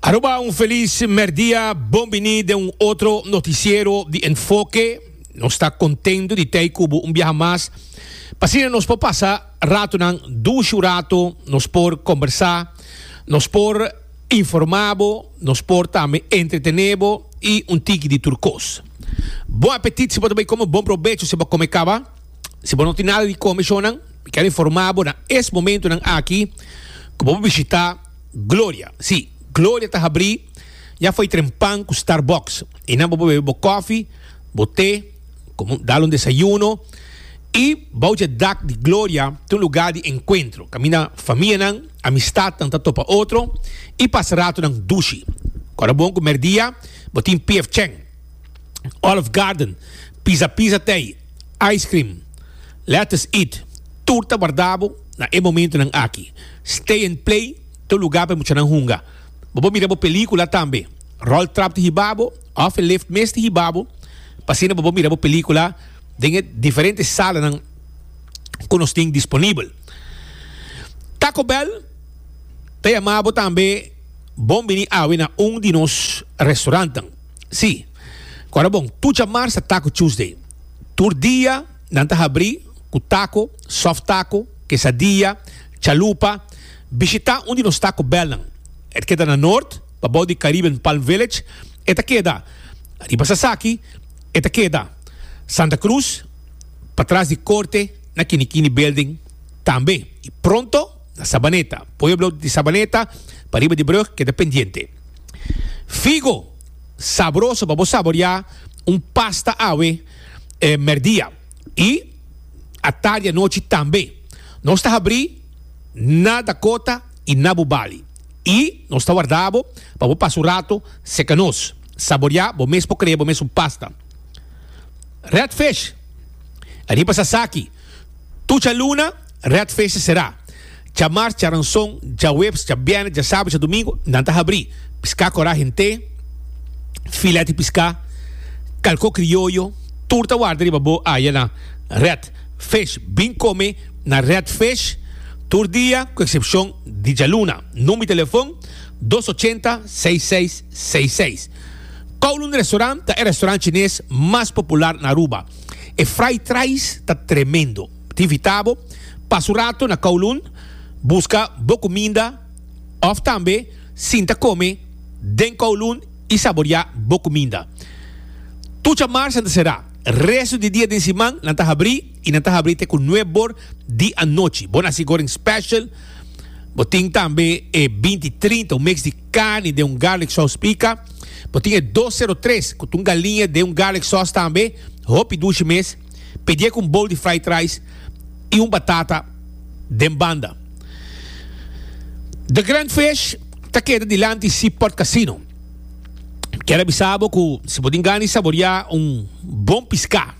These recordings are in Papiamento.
Aruba un feliz merdia, bon bini den un otro noticiero di Enfoke. Nos ta contento di tei cu bo un biaha mas. Pasina nos por pasa ratonan dushu rato, nos por conversa, nos por informa bo, nos por tambe entretene bo y un tiki di tur cos. Bon apetit si bo ta bay come, bon probecho si bo a come caba. Si bo no tin nada di comishonnan, mi ker informa bo na es momentonan aki cu bo por bishita Gloria. Si, Gloria ta habri ya fo'i tren pan cu Starbucks. Einan bo por bebe bo cofi, bo te, como dal un desayuno. Y bou dje dak di Gloria ta un lugar di encuentro, caminda famianan, amistadnan ta topa otro y pasa ratonan dushi. Cu ora bon cu merdia bo tin P.F. Chang, Olive Garden, Pizza Pizza Tei, Ice cream, let us eat, tur ta warda bo na e momentunan aki. Stay and play, tur lugar pa e muchanan hunga. Bo por mira bo pelicula tambe, roll trap di hiba bo of e lift mes di hiba bo, pa asina bo por mira bo pelicula den e diferente salanan cu nos tin disponibel. Taco Bell ta yama bo tambe bon bini awe na un di nos restaurantnan. Sí. Cu ora bon, tur djamars ta Taco Tuesday. Tur dia nan ta habrí cu taco, soft taco, quesadilla, chalupa. Bishitá un di nos Taco Bellnan. E ta keda na Noord, pabou di Caribbean Palm Village. E ta keda, riba Sasaki, e ta keda, Santa Cruz, patras di Corte, na Kini Kini Building tambe. Y pronto na Sabaneta. Pueblo di Sabaneta, pariba di brug, keda pendiente. Figo sabroso pa bo saboreá un pasta awe e mèrdia i atardi anochi tambe. Nos ta habrí na Dakota i na bo bali i nos ta wardá bo pa bo pasa un rato serka nos. Saboreá bo mes por krea bo mes un pasta. Redfish, riba sasaki, tucha luna. Red Face será. Djamars, djaranson, djaweps, djabiernes, djasabes, djadomingo nan ta habrí. Piscá corá hent'é, filet di piscá, calcó crioyo, tur ta warda riba bo aya na Red Face. Bin come na Red Face tur dia cu excepcion di djaluna. Number di telefon dos ochenta, seis seis seis seis. Kowloon Restaurant ta e restaurant chines mas popular na Aruba. E fried rice ta tremendo. Tibitabo pas un rato na Kowloon, buska bo kuminda òf tambe sinta kome den Kowloon i saboriá bo kuminda. Tucha Marsa ta será. Restu di dia den siman nan ta habrí i nan ta habrí te ku nueb bor di anochi. Bo na hasi Goreng Special, bo tin tambe e binti trinta, un mix di carni den un garlic sòs pica. Bo tin e dos sero tres ku ta un galiña den un garlic sòs tambe, hopi dushi mes. Pedié ku un bol di fried rice i un batata den banda. The Grand Fish ta keda dilanti Sea Port Casino. Kier a bisa bo ku si bo tin gan di saboriá un bon piská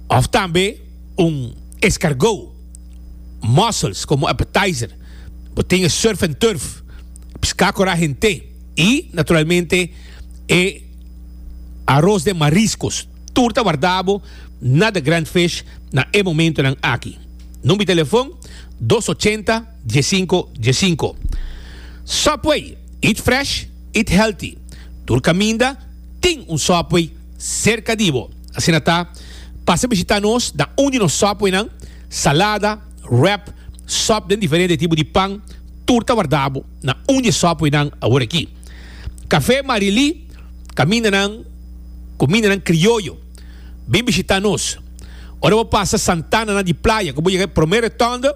òf tambe un escargot, mussels, komo appetizer, bo tin e surf and turf, piská kora hent'é i naturalmente e aros den mariscos. Tur ta warda bo na The Grand Fish na e momentonan aki. Number di telefon, dos ochenta, diesinko, diesinko. Subway, eat fresh, eat healthy. Tur kaminda tin un Subway serka di bo. Asina ta, pasa bishita nos na un di nos Subwaynan, salada, wrap, sop den diferente tipo di pan, tur ta warda bo na un di e Subwaynan awor aki. Café Marilí, Camindanan, Comindanan Crioyo, bin bishitá nos. Ora bo pasa Santana na di playa cu bo yega e prome rotonde,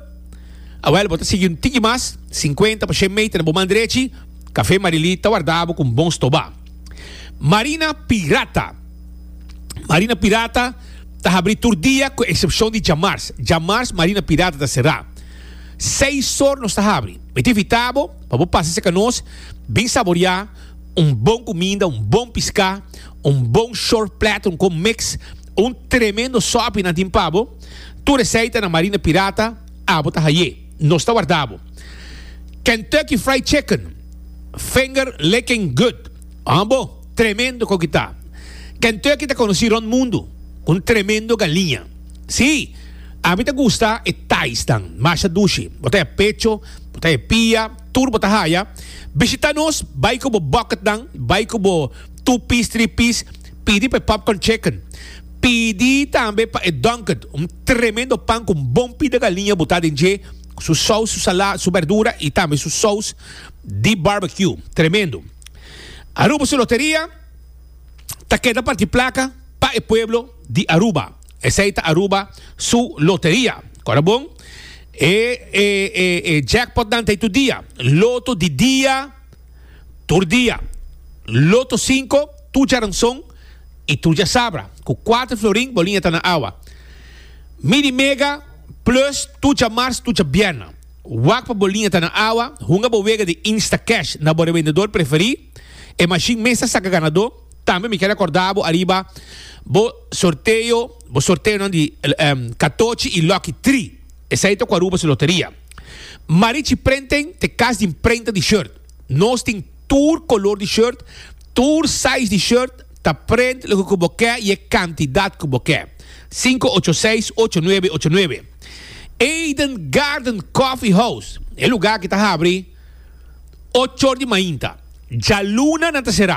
awel bo ta sigui un tiki mas, cincuenta pa shen meter na bo man drechi, Café Marilí ta warda bo cu un bon stobá. Marina Pirata, Marina Pirata ta habrí tur dia cu excepcion di djamars. Djamars Marina Pirata ta será. Seis or nos ta habrí. Mi ta invitá bo. Pa bo pasa cerca nos, bin saboria un bon cuminda, un bon pisca, un bon short platter, un con mix, un tremendo sopi nan tin pa bo. Tur esey ta na Marina Pirata, abo ta haye. Nos ta warda bo. Kentucky Fried Chicken, finger licking good. An bo, tremendo con ki ta. Kentucky ta conoci rond mundo, un tremendo galiña. Si! Ami ta gusta e taisnan, masha dushi. Bo ta e pecho, bo ta e pia, tur bo ta haya. Bishita nos, bai ku bo bucketnan, bai ku bo two piece, three piece, pidi pa e popcorn chicken. Pidi tambe pa e donket, un tremendo pan ku un bon pida galiña botá den dje, ku su sous, su salá, su berdura i tambe su sous di barbecue. Tremendo. Aruba su loteria ta keda parti plaka pa e pueblo di Aruba. Esei ta Aruba su loteria. Kora bon? E e e e jackpotnan ta ei tur dia. Loto di dia tur dia. Loto sinko tur djaranson i tur djasabra. Ku kuater florin bo liña ta na awa. Mini mega plus tur djamars tur djabierna. Wak pa bo liña ta na awa, hunga bo wega di Instacash na bo revendedor preferí. E mashin mes ta saka ganadó. Tambe mi ke rekorda bo ariba bo sorteo, bo sorteonan di katochi i lòki tri. Esei ta ku Aruba su loteria. Marichi Printing ta kas di mprenta di short. Nos tin tur kolor di short, tur size di short, ta print loke ku bo ke i e kantidat ku bo ke. Sinku ocho seis ocho nuebe ocho nuebe. Eden Garden Coffee House, e lugá aki ta habri ochor di mainta. Djaluna nan ta será.